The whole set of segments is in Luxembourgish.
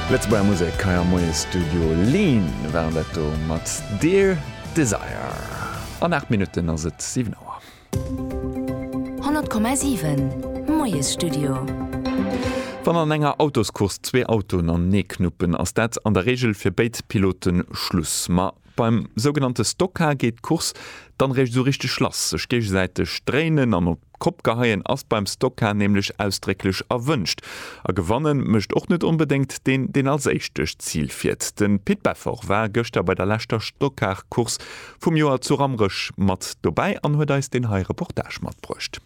Lëtzebuerger Musek hei am Moiesstudio. Lean waren dat do mat Dear Desire. An 8 Minutten ass et 7 Auer. 100,7, Moiesstudio. Wann an enger Autoscourse zwee Autoen anenee knuppen, ass dat an der Reegel fir béid Pilote Schluss. Ma Beim sougenannte Stoka geet d'Course dann réischt esou richteg lass. Sech géigesäiteg dréinen an op d'Kopp geheien ass beim Stoka nämlech ausdrécklech erwënscht. A gewannen mécht och net onbedéngt deen, deen als éischte d'Zil fiert. De Pit Beffort war gëschter bei der leschter Stokar-Course vum Joer zu Rammerech mat dobäi an huet eis deen hei Reportage matbruecht.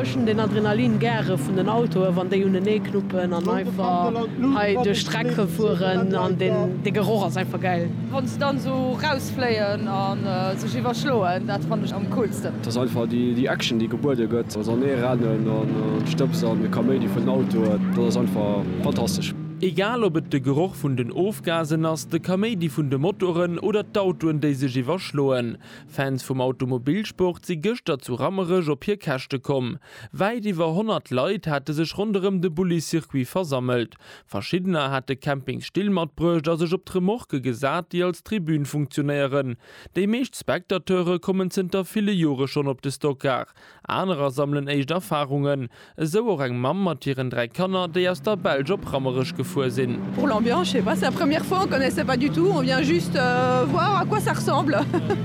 Ech hun den Adrenalin gäre vun den Autoen wann déi unenee knuppen an einfach hei duerch d'Streck fueren an de Geroch ass einfach gäil. Wann se dann sou rausfléien a sech iwwerschloen, dat fannen ech am coolsten. T'ass einfach déi Action déi gebuede gëtt, also an ee rennen an d'Stëbs an de Kaméidi vun den Autoen, dat ass einfach fantastesch. Egal ob et de Geroch vun den Ofgasen ass, de Kaméidi vun de Motoren oder d'Autoen déi sech iwwerschloen, Fans vum Automobilsport si gëschter zu Rammerech op hir Käschte komm. Wäit iwwer 100 Leit hate sech ronderëm de Bulli-Circuit versammelt. Verschiddener hate Campingsstill matbruecht a sech op d'Remorquë gesat, déi als Tribün funktionéieren. Déi meescht Spectateure kommen zënter ville Jore schonn op de Stockcar, Anerer sammelen éischt Erfarungen, esou och eng Mamm mat hiren dräi Kanner, déi aus der Belsch op Rammerech gefuer sinn. Pour l'ambiance, je sais pas, c'est la première fois, on connaissait pas du tout, on vient juste voir à quoi ça ressemble.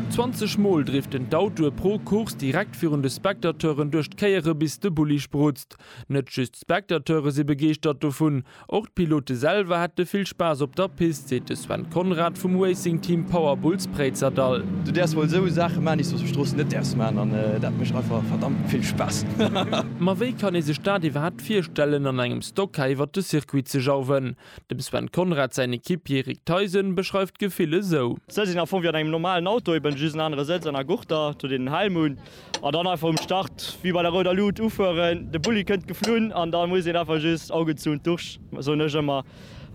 20 mol driften d'Autoe pro Course direkt virun de Spectateuren duerch d'Kéiere bis de Bulli sprutzt. Net just d'Spectateure si begeeschtert dovun, Och d'Pilote selwer hätte vill Spaass op der Pist, seet de Sven Conrad vum Racing Team Power Bulls Préizerdahl. Du däerfs wuel esou Saache maan, déi s de op der Strooss net däerfs maan an dat mécht einfach verdammt vill Spaass. Ma wéi kann ee sech dat iwwerhaapt virstellen an engem Stock Car iwwert de Circuit ze jauwen? Dem Sven Conrad säin Equipier Rick Theisen beschreift d'Gefill esou. Sëtz sinn am Fong wéi an engem normalen Auto, eben just en anere Sëtz an a Gurter, do deen en Helm hunn. An dann einfach um Start wéi bei der rouder Luut ufueren. De Bulli kënnt geflunn an da muss een einfach just Augen zu und durch, soen ech ëmmer.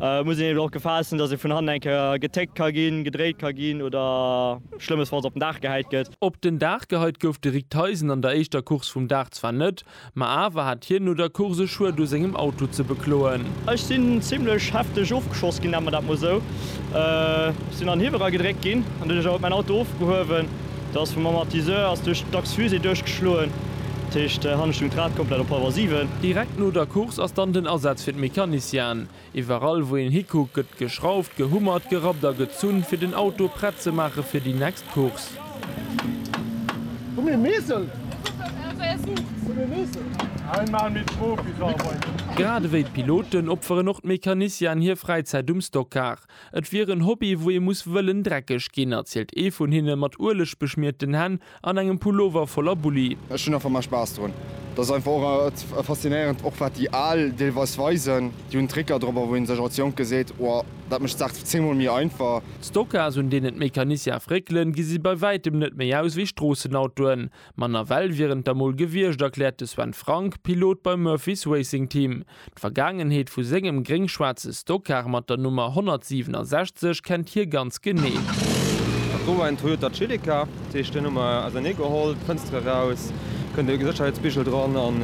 Et muss een eben och Gefahr essen, dass ee vun hannen eng Kéier getéckt ka ginn, gedréit ka ginn oder schlëmmesfalls op den Daach gehäit gëtt. Op den Daach gehäit gouf de Rick Theisen an der éischter Course vum Dag zwar net, Ma awer hat hien no der Course Schued u sengem Auto ze bekloen. Ech sinn zimlech hefteg ofgeschoss ginn, nenne mer dat mol esou. Ech sinn an Hiwwel eragedréckt ginn an duerch dat ass mäin Auto ofgehuewen. Da ass vum Amortisseur ass duerch d'Achs-fusée duerchgeschloen. Dat heescht, hannen stoung d'Rad komplett op Power siwen. Direkt no der Course ass dann den Asaz fir d'Mecaniciene. Iwwerall wou een hikuckt gëtt geschrauft, gehummert, gerappt a gezunn fir den Auto prett ze maache fir déi next Course. Grad ewéi d'Piloten opferen och d'Mecanicianen hir Fräizäit um Stockcar. Et wier en Hobby wou ee muss wëllen dreckeg ginn, erzielt ee vun hinne mat Ueleg beschmierten Hänn. An engem Pullover voller Bulli. Ech hunn einfach mei Spaass drun. Dat ass einfach och et faszinéierend, och wat déi Al deelweis weisen. Déi hunn Tricker drop wou een sech als Jonke seet, Wow, dat mécht d'Saach zéngmol méi einfach. D'Stocas un deenen d'Mécaniciens réckelen, gesi bei wäitem net méi aus wéi Stroossenautoen. Manner well wieren et der mol gewiescht, erkläert de Sven Frank, Pilot beim Murphys Racing Team. D'Vergaangenheet vu sengem gréng-schwaarze Stockcar mat der Nummer 167 kennt hie ganz genee. Dat wor en Toyota Celica, dat heescht deen hu mer ausernee geholl, d'Fënster eraus, kënnt e Sécherheetsbigel dran an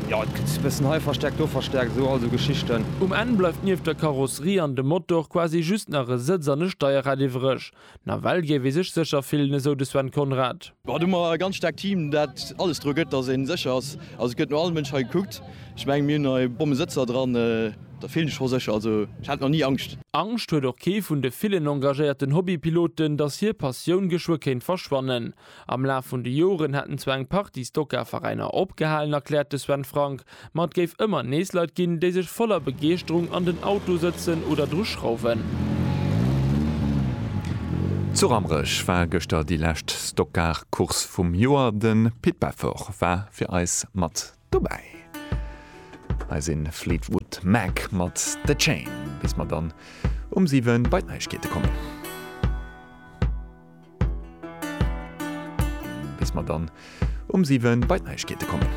jo et gëtt e bëssen hei verstäerkt, do verstäerkt, esou all esou Geschichten. Um Enn bleift nieft der Karosserie an dem Motor quasi just nach e Sëtz an e Steierrad iwwreg. Nawell géif ee sech sécher fillen, esou de Sven Conrad. Haut hu mer e ganz staarkt Team, dat alles dru gëtt, datt ee sécher ass. Also et gëtt no all Mënsch hei gekuckt. Ech mengen, mir hunn hei Bommesëtzer dran. Der fillt sech scho sécher. Also ech hat nach ni Angscht. Angscht huet och kee vun de villen engagéierten Hobbypiloten, datt hir Passioun geschwë kéint verschwannen. Am Laf vun de Joren hätten zwar eng Partie Stoka-Veräiner opgehalen, erkläert de Sven Frank, ma et géif ëmmer nees Leit ginn, déi sech voller Begeeschterung an den Auto sëtzen oder dru schrauwen. Zu Rammerech war gëschter déi lescht Stockcar-Course vum Joer. De Pit Beffort war fir eis mat Dobäi eise Fleetwood Mac mat The Chain, bis mer dann um 7 bei d'Neigkeete kommen. Bis mer dann um 7 bei d'Neigkeete kommen.